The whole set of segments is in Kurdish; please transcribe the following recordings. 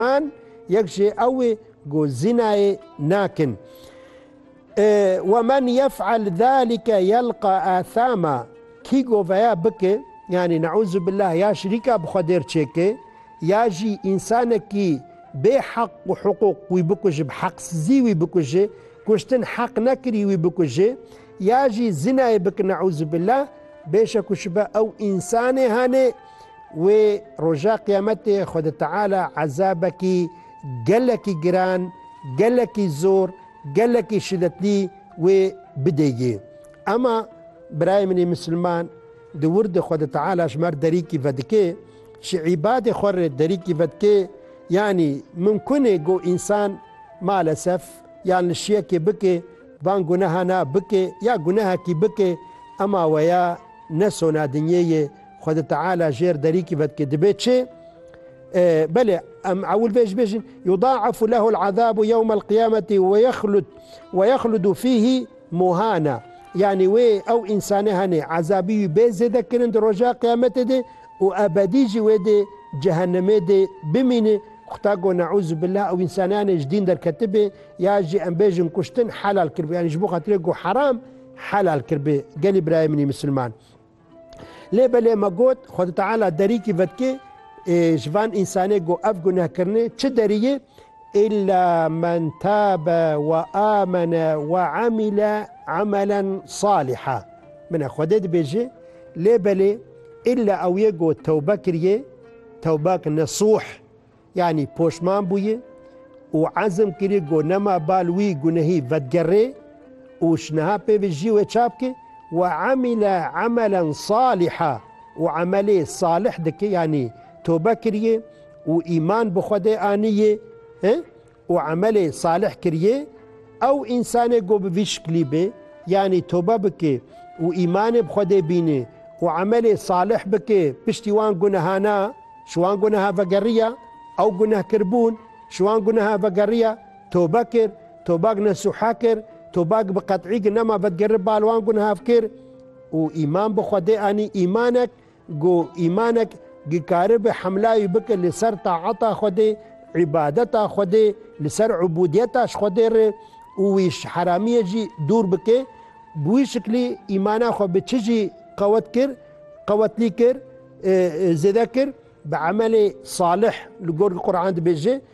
An yek jê ew ê ku zînayê nakin. Wemen yef'el zalike yelqa athama kî ku veya bike, yanî ne'uzubillah ya şirîka bi xwe dêr çêke ya jî însanekî bê heq û hiqûq wî bikuje, bi heqsizî wî bikuje, kuştin heq nekirî wî bikuje ya jî zînayê bike ne'uzubillah, bêşekûşibe ew însanê hanê. wê roja qiyametê xwe di Teala ezabekî gelekî giran, gelekî zor, gelekî şidetlî wê bidê yê. Ema birayê min ê misilman di wirdê xwe di Teala ji mer derîkî vedikê, ji îbadê xwe re derîkî vedikê, yanî mimkunê ku însan malesef yan li şiyekê bike van gunehana bike ya gunehekî bike ema weya nesona dinyeyê Xwedê Teala jêr derîkî vedike dibê çi? E, belê, em ewil vê jî bêjin yudaefu lehul azabu yewmel qiyameti ve yexlud ve yexludu fîhî muhana. Yanî wê ew însanê henê ezabî wî bê zêde kirin di roja qiyametê de û ebedî jî wê dê cehennemê dê bimîne. Xuda go neûzû billah ew însanê henê ji dîn derketibê ya jî em bêjin kuştin helal kiribê yanî ji bo xatirê go heram helal kiribê. Gelî birayê min î misilman. Lê belê me got, Xwedî Teala derîkî vedikê ji van însanê ku ev guneh kirine, çi deriyê? Îlla men tabe we amene we emîle emelen salîha. Min e Xwedê dibêje, lê belê îlla ew yê ku tewbe kiriyê, tewbak nesûh, Yanî poşman bûye û ezm kiriye ku nema bal wî gunehî vedigerê û ji niha pêvê jî wê çap ke we emîle emelen salîha û emelê salîh dike yanî tobe kiriye û îman bi Xwedê anîye. û emelê salih kiriyê, ew însanê ku bi vî şiklî be, yanî tobe bike û îmanê bi Xwedê bîne û emelê salih bike piştî wan gunehana, ji wan guneha vegeriya, ew gunehkirbûn, ji wan guneha vegeriya, tobe kir, tobak nesuha kir, tobak bi qet'î ki nema vedigere bal wan gunehav kir û îman bi Xwedê anî, îmanek Ku îmanek dikaribe hemlayî bike li ser taeta Xwedê, îbadeta Xwedê, li ser ubûdiyeta ji Xwedê re û wî ji heramiyê jî dûr bike, bi wî şiklî îmana xwe bi çi jî qewet kir, qewetlî kir, zêde kir, bi emelê salih li gor Quran dibêje,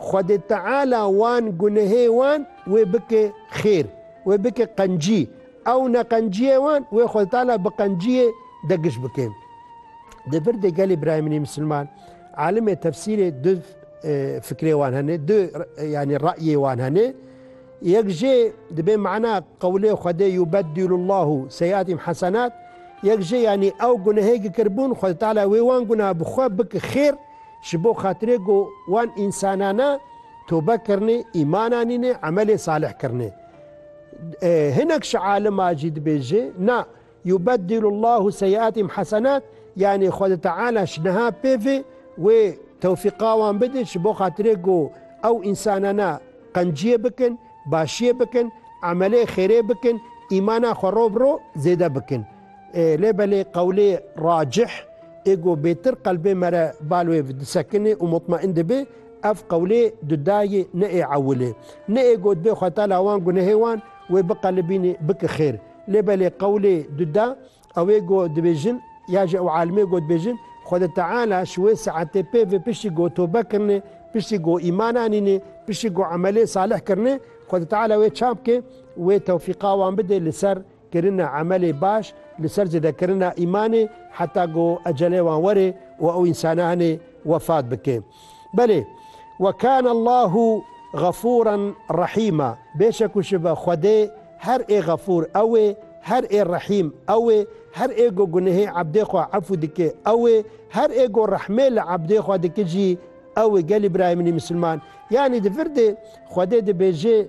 Xwedê Teala wan gunehê wan wê bike xêr, wê bike qencî, ew neqenciyê wan wê Xwedê Teala bi qenciyê de giş bike. Di virdê gelê birayemînê misilman, alimê tefsîrê du fikrê wan hene, du yanî reyê wan hene. Yek jê dibê mana qewlê Xwedê yubedîlullahu seyiatîm hesenat, yek jê yanî ew gunehê ki kiribûn Xwedê Teala wê wan guneha bi xwe bike xêr, Ji bo xatirê ku wan însanane tûbe kirine, îman anîne, emelê salih kirine. Hinek ji aliman jî dibêje, Na, yubeddilu Llahu seyiatihim hasenat, yanî Xweda Teala ji niha pêvê wê tewfîqa wan bide ji bo xatirê ku ew însanane qenciyê bikin, başiyê bikin, emelê xêrê bikin, îmana xwe rov bi rov zêde bikin. Lê belê qewlê racih ê ku bêtir qelbê me re bal wê disekinê û mutmaîn dibe, ev qewlê di dayê ne ê ewil ê. Ne ê gotbê xweta la wan gunehê wan wê biqelibînê bike xêr. Lê belê qewlê di da ew ê ku dibêjin ya jî ew alimê ku dibêjin, Xweda Teala ji wê saetê pêve piştî ku tobe kirine, piştî ku îman anîne, piştî ku emelê salih kirine, Xweda Teala wê çavke, wê tewfîqa wan bide li ser Kirina emelê baş li ser zêdekirina îmanê heta ku ecelê wan were û ew însananê wefat bike. Belê, Wa kâne Allahu Xefûran Rehîma, bêşek û şibe Xwedê her ê Xefûr ew ê, her ê Rehîm ew ê, her ê ku gunehê ebdê xwe efû dike ew ê, her ê ku rehmê li ebdê xwe dike jî ew ê. Gelî birayê min ê misilman, yanî di vir de Xwedê dibêje,